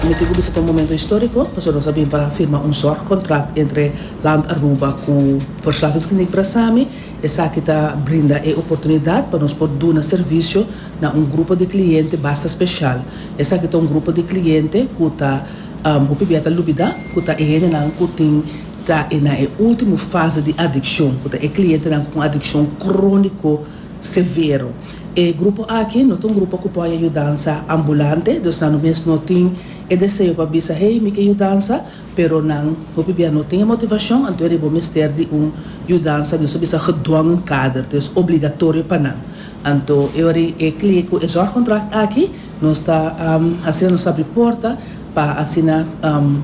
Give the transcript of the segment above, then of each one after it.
Mi tin cu bisa ta un momento historico pasobra nos a bin pa firma un zorg contract entre Land Aruba cu Verslavingskliniek Brasami. Esaki ta brinda e oportunidad pa nos por duna servicio na un grupo di cliente basta special. Esaki ta un grupo di cliente cu ta hopi bia ta lubida cu ta e hendenan cu tin ta e na e ultimo fase di adiccion, cu ta e clientenan cu un adiccion cronico severo. E grupo aki no ta un grupo ku pone yudansa ambulante, dus nan no mes no tin e deseo pa bisa hei mi ke yudansa, pero nan hopi bia no tin e motivashon, anto eri bo mester di un yudansa di nos ta bisa gedwongen kader, to es obligatorio pa nan. Anto e ora e klie ku e zòrgkontrakt aki nos ta hasi nos abri porta pa asina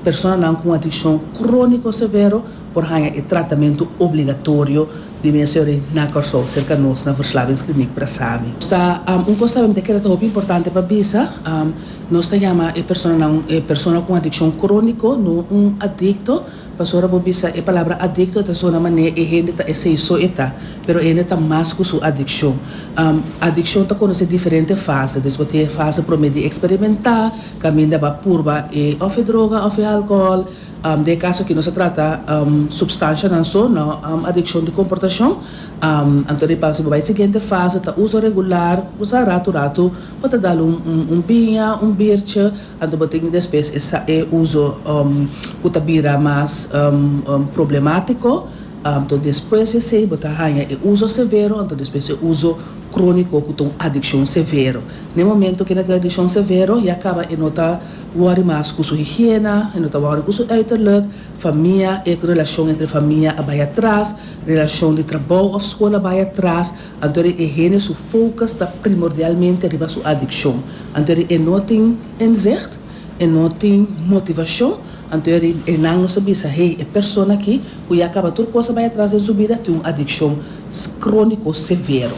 personanan ku un adikshon króniko severo por haña e tratamentu obligatorio, Di mi a seori na Kòrsou serka nos na Verslavingsklinik Prasami. Nos ta un kos tambe mi ta kere ta hopi importante pa bisa, nos ta yama e personanan e persona ku un adikshon króniko, no un adikto, paso ora bo bisa e palabra adikto ta sona manera e hende ta esei so e ta, pero e hende ta mas ku su adikshon. Adikshon ta konosé diferente fase, dus bo tin e fase promé di eksperimentá, kaminda bo a purba e òf e droga òf e alkohòl, Den e kaso aki nos a trata supstanshanan so, no adikshon di komportashon. Anto riba si bo bai siguiente fase ta uso regular, kuminsá ratu ratu bo ta dal un biña, un birtje, anto bo tin despues e uso ku ta bira mas problemátiko, anto despues di esei bo ta haña e uso severo, anto despues e uso króniko ku ta un adikshon severo. Na e momento ku e na tin adikshon severo ya kaba e no ta. Wòrri mas ku su higiena, e no ta wòrri ku su uiterlijk, famia, e ku relashon entre famia a bai atras, relashon di trabou òf skol a bai atras, anto di e hende su focus ta primordialmente riba su adikshon, anto di e no tin inzicht, e no tin motivashon, anto di e nan no sa bisa, hey, e persona aki ku ya kaba tur kos a bai atras den su bida tin un adikshon króniko severo.